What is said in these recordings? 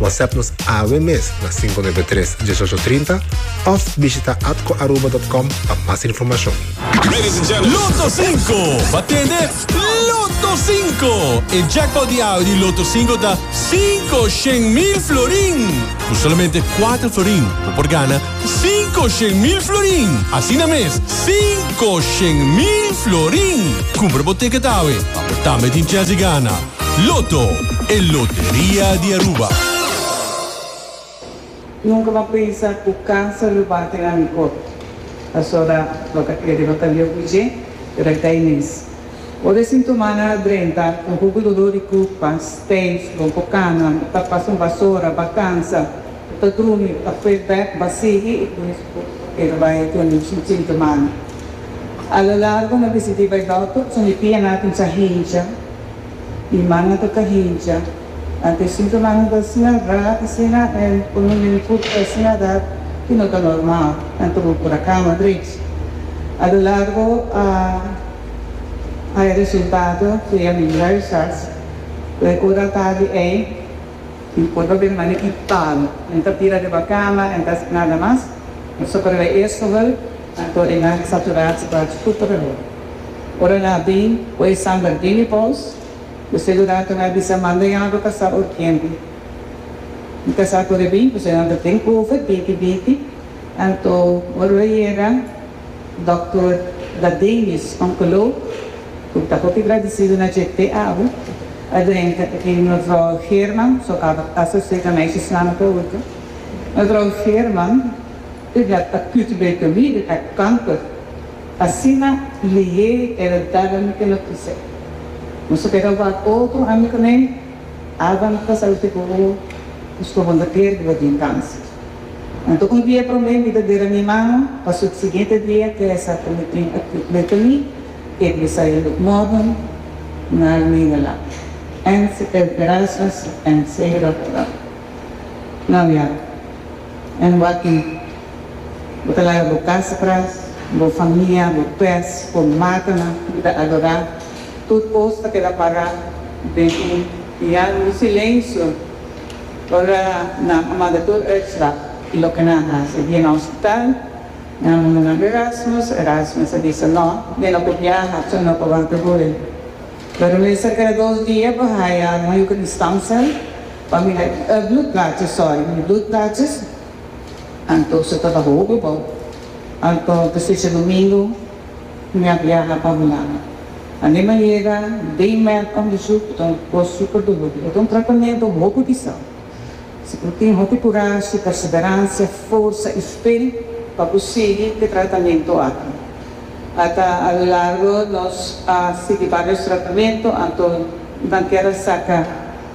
WhatsApp nos awe mes na 593 1830 of bishita atcoaruba.com pa mas informacion. Ladies and gentlemen. Lotto 5, pa tende Lotto 5. E jackpot di awe di Lotto 5 ta cinco shen mil florin. Cu solamente cuater florin bo por gana cinco shen mil florin. Asina mes, cinco shen mil florin. Cumpra bo ticket awe pa bo tambe tin chance di gana. Lotto, e loteria di Aruba. Nunca m'a pensa cu cancer lo bati na mi cort. Pasobra lo ta crede lo ta leucu dje, pero ai ta e mes. Ora e sintomanan a drenta, un poco dolor di curpa, stijf, bon po cana, ta pasa un basora, ba cansa. E ta drumi, ta fue bek basí i pues e ta bai cu un chin semana. A lo largo no bisidí bai dòkter pasobra e pianan a cuminsá hincha i mannan ta ta hincha. Anto e sintomanan ta asina ra, asina e por un minut ta asina ra cu no ta normal. Anto bo por a cama drech. A lo largo a hay resultado via mi rayos X. Cu e ora a tardi ei. Mi por ta bira mane i palo. Nan ta tira riba kama, nan ta haci nada mas. Mi so por riba esohel, nan ta ordena cu saturad su cuarto super mehor. Ora nan a bin cu e samba Dini Paus, cu seguridad cu nan a bisa manda yagu ta sa urgente. Mi ta sa cu ora a bin, pasobra nan ta den over, binti binti. Anto ora lo yega. Dòkter Dadenius, onkoloog, ku ta hopi gradisidu na dje te awe, a drenta e ke Mevrouw Geerman, so aba ta Associatie Meisjesnamen per Hoeken. Mevrouw Geerman ta blad acute leucemie di hart kanker. Asina Lie el a dal ami e notisia. Nos a keda wak otro ami kuné, aba no ta sa lo te bo bo, nos lo wunderkeer di bo tin kanser. Anto un dia promé mi ta dera mi mano, pa subsiguiente dia te sa ta mi tin aki frente mi, e Messiah look modern na el mina la. Ends e Erasmus ends e Rotterdam. Nou ja, en wak-i. Bo ta laga bo kas atras, bo famia, bo pes, bo matanan ku bo ta adorá, tur kos ta keda pará den un pian, un silensio. Ora nan a manda tur uitslag di loke nan a hasi den hospital, nan a manda nan ku Erasmus, Erasmus a bisa no, mi no por biaha, so no por wanta guri. Pero mi serka di dos dia por haya un hugenstandsel pa mi da e bloedplaatjes sòri, mi bloedplaatjes, anto so tabata hopi bo, anto ta stichi domingo. Mi a biaha pa Hulanda. Anto mi a yega den mèt òndersuk. Bo ta un kos super dulur. Bo ta un tratamentu hopi pisá. Si bo tin hopi kurashi, perseveransia, forsa i fe pa bo sigui ku e tratamentu aki. Ata alulargo nos a sigui vários tratamentu, anto nan kier a saka.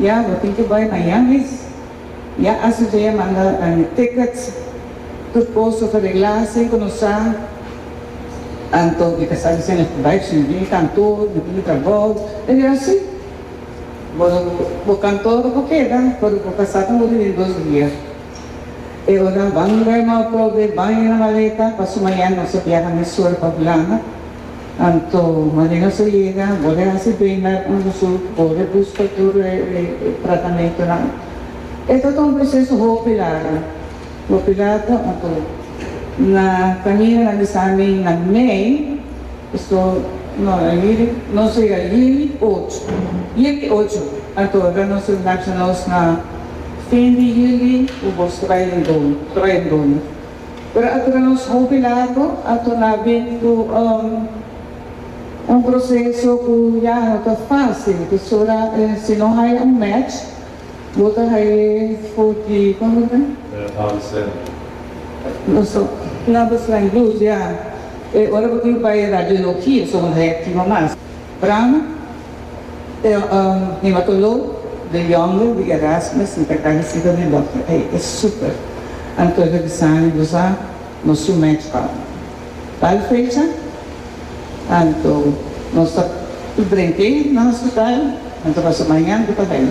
Ya bo tin ke bai na Yangi's. Ya Asu dje a manda e tickets. Tur cos ta regla sin cu nos sa. Anto mi ta sa diciendo esta bai cu si mi bini cantor mi bini ta bou. E di Asu, bo bo cantor bo keda pero bo ta sa ta muri den dos dia. E ora banga e mau kobe, banga e maleta pa suma ya nos a biaha na Sur pa Hulanda. Anto Maria José yega, bo de hasi bena underzoek, bo de buska tur e tratamentonan. E ta ta un proseso hopi largu, hopi largu anto na caminonan di Sami na mei, esto no a yiri, nos a yega yiri ocho, yiri ocho, anto ora nos a nacha nos na fin di yiri u bo sta bai den dona, ta bai den dona. Pero a dura nos hopi largo ato na bin cu un proceso cu ya no ta facil, pasobra si no haya un match bo ta haye for di, como ta biba? Paso planta slang blues, ya. E ora bo tin bay radio no ki, so bo ta haya activa mas. Brano? Mi matolo den Youngville di Erasmus, mi ta agradesí pa mi dòkter, ey e súper. Anto e revisánen bo sa nos su mèch bal. Bal fecha, anto nos ta p'drenké na hospital, anto nos ta bañá, anto ta bai.